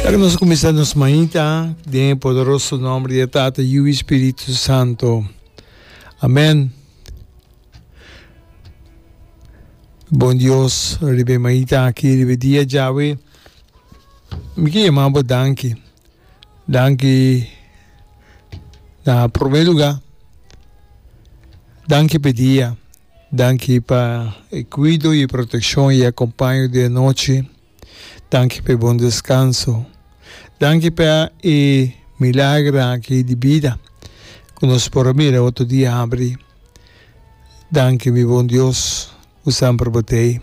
Ta cu nos a cuminsa nos mañita den e poderoso nomber di e Tata, Yu i Spiritu Santo. Amen. Bon Dios, riba e mañita aki, riba e dia djawe, mi ke yama bo danki. Danki na prome lugar. Danki pe dia. Danki pa e kuido y proteccion y acompaño di anochi. Danki pa e bon descanso. Danki pa e milagra aki di bida cu nos por a mira otro di abri. Danki mi bon Dios cu san probote'i.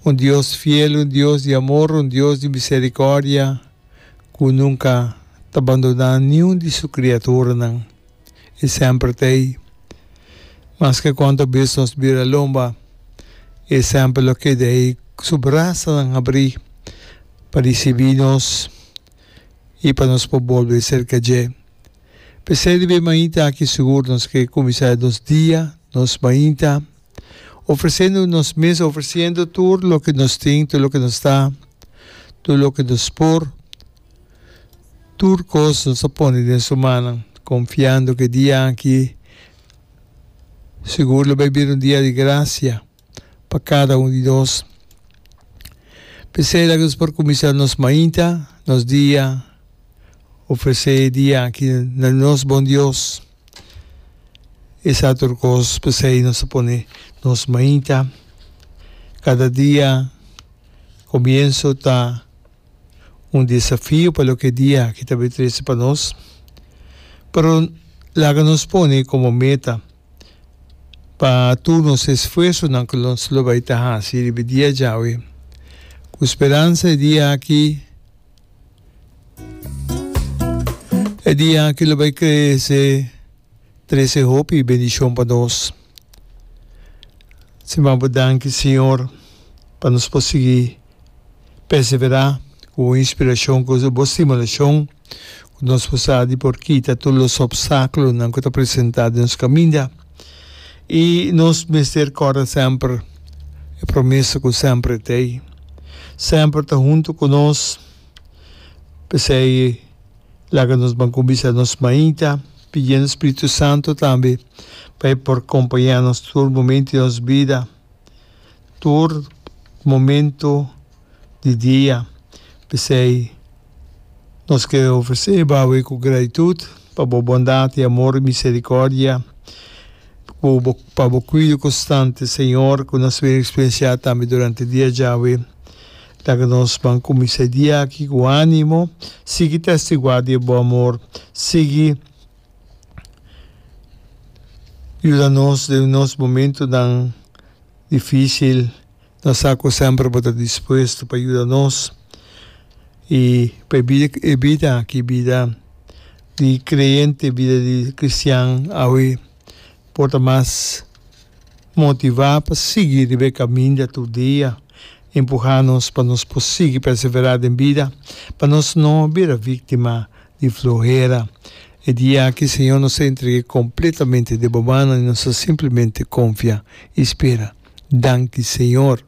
Un Dios fiel, un Dios di amor, un Dios di misericordia cu nunca ta bandona niun di su criaturanan. i semper ta ei. Maske kon ta bis nos bira lomba, e semper lo keda ei ku su brasanan habrí pa risibí nos i pa nos por bolbe serka dje. P'esei di b'e mainta aki sugur nos ke kuminsá nos dia, nos mainta, Ofreciendo nos mes, ofreciendo tur loke nos tin, tur loke nos ta, tur loke nos por, tur cos nos a pone den su mannan, confiando ke dia aki segur lo bai bira un dia di gracia pa cada un di nos. Pesey laga nos por cuminsa nos mainta, nos dia, ofrece e dia aki na nos bon Dios. Esei tur kos p'esei nos ta pone nos mainta kada dia. Komienso ta un desafio pa loke dia ki ta bin trese pa nos, pero laga nos pone komo meta pa tur nos esfuersonan ku nos lo bai ta hasi riba e dia djawe ku speransa e dia aki E dia aki lo bai krese trese hopi bendishon pa nos. Siman bo danki Siñor pa nos por sigui perseverá ku bo inspirashon, ku bo stimulashon, ku nos por sa di por kita tur los opstákulonan ku ta presentá den nos kaminda. I nos mester kòrda semper e promeso ku semper e tei. Semper ta huntu ku nos. P'esei laga nos ban kumbisa nos Maita, pidiendo Spiritu Santu tambe pa e por kompañá nos tur momento di nos bida. tur momento di dia, p'esei nos ke ofres'é bawe ku gratitut pa bo bondat i amor i miserikòrdia, ku bo pa bo kuido konstante Señor ku nos wer eksperensiá tambe durante dia djawe. Laga nos ban kumins'é dia aki ku ánimo, sigui testiguá di bo amor, sigui. yuda nos den nos momentonan dificil, ta sa cu semper bo ta dispuesto pa yuda nos y pa e bida aki, bida di creyente, bida di cristian awe por ta mas motiva pa sigui riba e caminda tur dia, empuha nos pa nos por sigui persevera den bida, pa nos no bira victima. di fluhera. E dia aki Señor nos a entrege completamente den bo mannan y nos ta simplemente confia y spera. Danki Señor.